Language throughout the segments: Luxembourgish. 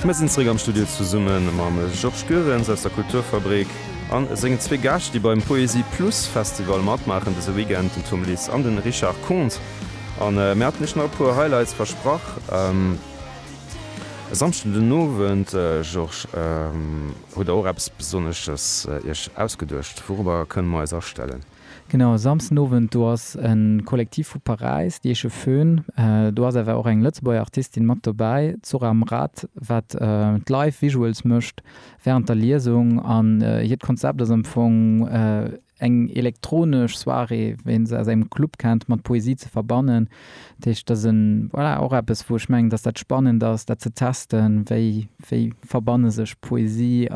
Mir sinn zréck am Studio zesumme mam Georges Goerens aus der Kulturfabrik a sengen zwee Gäscht, déi beim Poésie Plus Festival matmaachen dëse Weekend, den Tom Liss an den Richard Konz. A mir haten iech nach e puer Highlights versprach. E Samschden den Owend, Georges, hutt der och eppes Besonnesches iech ausgeduecht. Wourobber kënne mer eis astellen? Genau, e Samsden Owend, do ass e Kollektiv vu Paräis, déi heesche Föhn. Do ass awer och eng Lëtzebuerger Artistin mat dobäi, d'Zora Mraz, wat d'Live Visuals mécht wärend der Liesung. An hiert Konzept ass am Fong eng elektronesch Soirée, wéi een se aus engem Club kennt, mat Poesie ze verbannen. Dat heescht, dat ass e, voilà, och eppes, wou ech mengen, dass dat spannend ass, dat ze testen, wéi verbanne sech Poesie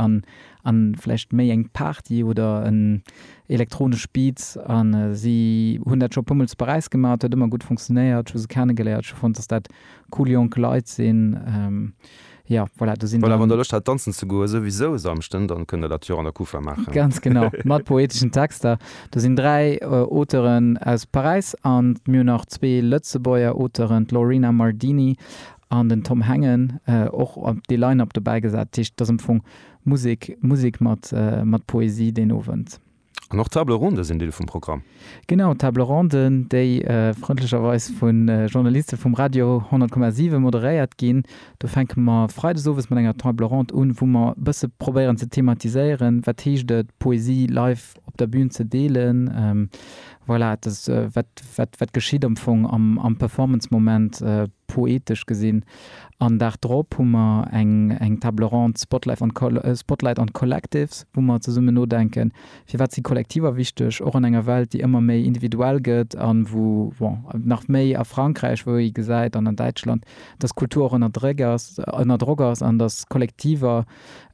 A vläicht méi eng Party oder en elektronesch Beat. A si hunn dat scho puermol zu Paräis gemaach, et huet ëmmer gutt funktionéiert. Ech hu se kennegeléiert, ech hu fonnt, datt dat cool jonk Leit sinn. Jo, voilà, do sinn der. Voilà, wann der Loscht hat danzen ze goen, souwisou e Samschden, dann kënnt der dat jo och an der Kufa maachen. Ganz genau, mat poeteschen Texter. Do sinn dräi Auteuren aus Paräis a mir hunn nach zwee Lëtzebuerger Auteuren, d'Lorena Mardini an den Tom Hengen, och op de Line-Up dobäigesat. Dat heescht, et ass am Fong. Musek, Musek mat mat Poesie deen Owend. An och Table Ronde sinn Deel vum Programm. Genau, Table Ronden, déi frëndlecherweis vu Journaliste vum Radio 10,7 moderéiert ginn. Do fänke mer Freides owes mat enger Table Ronde un, wou mer e bësse probéieren ze thematiséieren, wat heescht et Poesie live op der Bün ze deelen. Voilà, et ass wat wat geschitt am Fong am am Performance-Moment poetesch gesinn. An Dag drop hu mer eng eng Table ronde Spotlife on Spotlight on Collectives, wou mer zesummen nodenken, firwat si Kollektiver wichteg, och an enger Welt, déi ëmmer méi individuell gëtt an wou, bon, nach méi a Frankräich, wou ee gesäit, an an Däitschland, dass Kultur och ënner Dréck ass, ënner Drock ass an dass Kollektiver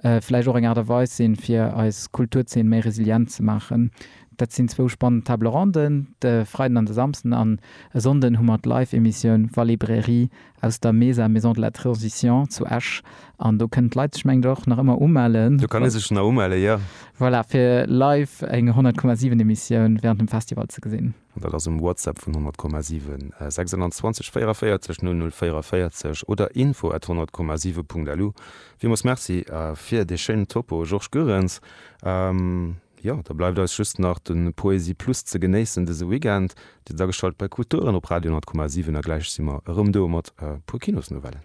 vläicht och eng Aart a Weis sinn, fir eis Kulturzeen méi resilient ze maachen. Dat sinn zwou spannend Table ronden, de Freiden an de Samsden. An e Sonnden hu mer d'Live-Emissioun Vallée Bréri. aus der Mesa Maison de la Transition zu Esch an do kënnen d'Leit sech mengen ech och nach ëmmer umellen. Do kann ee sech nach umelle, jo. Voilà, fir live eng 100,7 Emissioun während dem Festival ze gesinn. An dat ass um WhatsApp vun 100,7, 26 44 00 44 oder info at 100,7.lu. Villmools Merci fir dee schéinen Topo, Georges Goerens. Jo, da bleift eis just nach de Poésie Plus ze genéissen dëse Weekend. Dir sidd ageschalt bei Kulturen op Radio 100,7 a gläich si mer erëm do mat e puer Kinosnouvellen.